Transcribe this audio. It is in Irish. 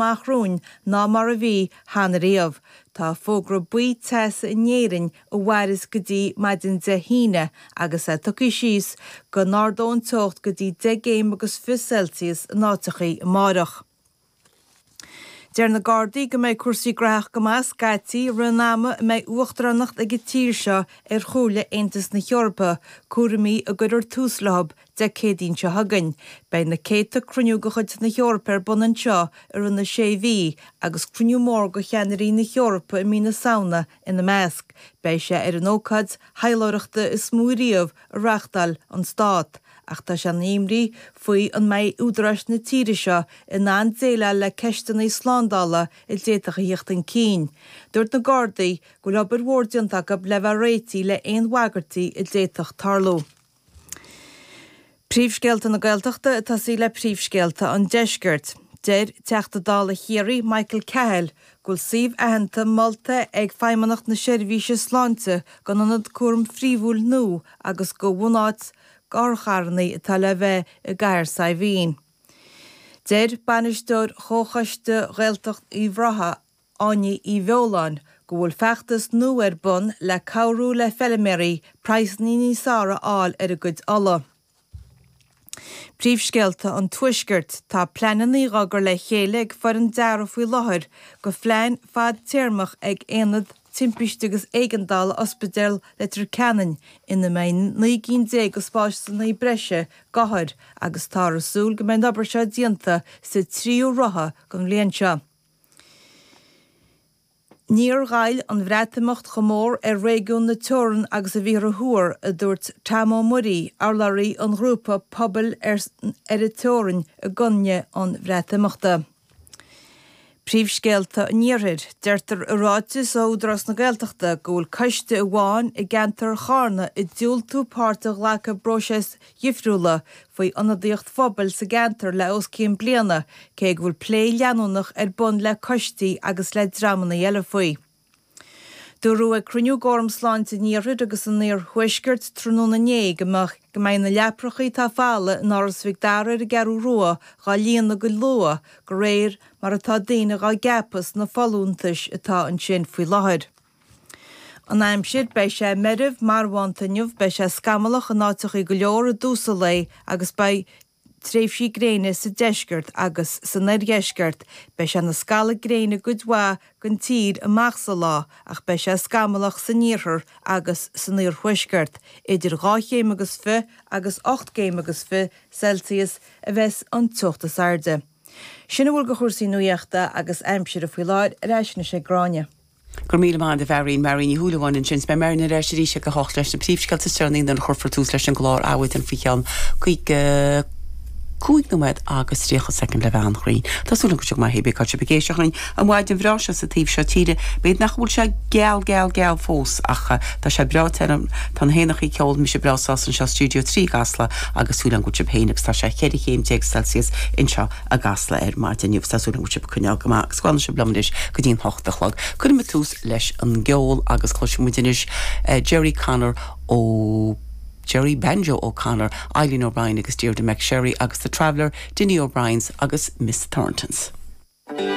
maith romhainn ná mar a bhí cheana riamh. Tá fógra buí teasa in Éirinn a mhaireas go dtí maidin Dé hAoine agus é tugtha suas go n-ardóidh an teocht go dtí deich gcéim agus fiche Celsius in áiteachaí amáireach. Deir na Gardaí go mbeidh cúrsaí graitheach go maith scaití roimh an ama a mbeidh uachtaránacht ag an tír seo ar Chomhairle Aontas na hEorpa, cúraimí a gcuirfear tús leothub Dé Céadaoin seo chugainn, beidh na céadta cruinniú de chuid na hEorpa ar bun anseo i rith na sé mhí, agus cruinniú mór de cheannairí na hEorpa i mí na Samhna ina measc. Beidh sé ar an ócáid thaidhleoireachta is mó riamh a reáchtáil an stát, ach tá sé ina imní faoi an mbeidh údaráis na tíre seo in ann déileáil le ceisteanna slándála a d'fhéadfadh a theacht chun cinn. Dúirt na Gardaí go bhfuil obair mhór déanta acu le bheith réitigh le haon bhagairtí a d'fhéadfadh tarlú. Príomhscéalta na Gaeltachta ag tosaí le príomhscéalta an Deiscirt. Deir Teachta Dála Chiarraí, Michael Cahill, go bhfuil suíomh aitheanta molta ag Feidhmeannacht na Seirbhíse Sláinte dhon ionad cúraim phríomhúil nua agus dho bhunáit otharcharrannaí atá le bheith i gCathair Saidhbhín. Deir bainisteoir Chomhchoiste Ghaeltacht Uíbh Ráthaigh, Áine Uí Bheoláin, go bhfuil feachtas nua ar bun le cabhrú le feilméaraí praghsanna níos fearr a fháil ar a gcuid olla. Príomhscéalta an Tuaiscirt, Tá pleananna á gcur le chéile ag foireann dearadh faoi láthair dho phlean fadtéarmach ag Aonad Timpiste agus Éigeandála Ospidéal Leitir Ceanainn ina mbeidh naoi gcinn déag de spásanna breise d'othair agus táthar ag súil go mbeidh an obair seo déanta sa tríú ráithe den bhliain seo. Níor ghoill an Bhreatimeacht chomh mór ar réigiún na teorann agus a bhíothar a thuar, a dúirt Tom Ó Muirí, urlabhraí an ghrúpa Pobail ar an Teorainn i gcoinne an Bhreatimeachta. Príomhscéalta an Iarthair. Deirtear i ráiteas ó Údarás na Gaeltachta go bhfuil coiste amháin i gceantar Charna ag diúltú páirt a ghlacadh i bpróiseas difriúla faoi ionadaíocht phobail sa gceantar le os cionn bliana cé go bhfuil plé leanúnach ar bun le coistí agus le dreamanna eile faoi. Dúradh ag cruinniú d'Fhóram Sláinte an Iarthair agus an Iarthuaiscirt tráthnóna inné go mbeidh na leaprachaí atá folamh in Áras Mhic Dara ar an gCeathrú Rua dhá líonadh go luath de réir mar atá daoine dhá gceapadh sna folúntais atá ansin faoi láthair. An Aimsir, Beidh sé meirbh marbhánta inniu, beidh sé scamallach in áiteachaí go leor i dtús an lae agus beidh tréimhsí gréine sa deisceart agus san oirdheisceart. Beidh sé ina scalladh gréine i gcuid mhaith den tír amach sa lá ach beidh sé scamallach san iarthar agus san iarthuaisceart. Idir dhá chéim agus fiche agus ocht gcéim agus fiche Celsius a bheas an teocht is airde. Sin a bhfuil de chúrsaí nuaíochta agus aimsire faoi láthair, ar ais anois ag Gráinne. Go raibh míle maith agat a Mharion, Marion Ní Shúilleabháin ansin. So beidh Marion ar ais arís ag a hocht leis na príomhscéalta is deireanaí nuair a chuirfear tús leis an gclár Adhmhaidin faoi cheann cúig cúig nóiméad agus tríocha soicind le bheith an-chruinn. Tá súil agam go bhfuil sibh go maith, cibé cén áit a bhfuil sibh ag éisteacht linn ar an mhaidin bhreá seo sa taobh seo tíre, bíodh nach bhfuil sé geal geal geal fós ach tá sé breá te ann. Tá na héanacha ag ceol, mise breá sásta anseo i Studio 3 i gCasla agus súil agam go bhfuil sibh féin agus tá sé cheithre chéim déag Celsius anseo. i gCasla ar maidin inniu. Tá súil agam go bhfuil sibh ag coinneáil go maith agus go bhfanfaidh sibh liom anois go dtí'n hocht a chlog. Cuirfidh muid tús leis an gceol agus cloisfidh muid anois Gerry Connor nó Gerry Banjo O'Connor, Eileen O'Brien agus Tíona McSherry agus The Traveller, Dinny O'Briens agus Miss Thorntons.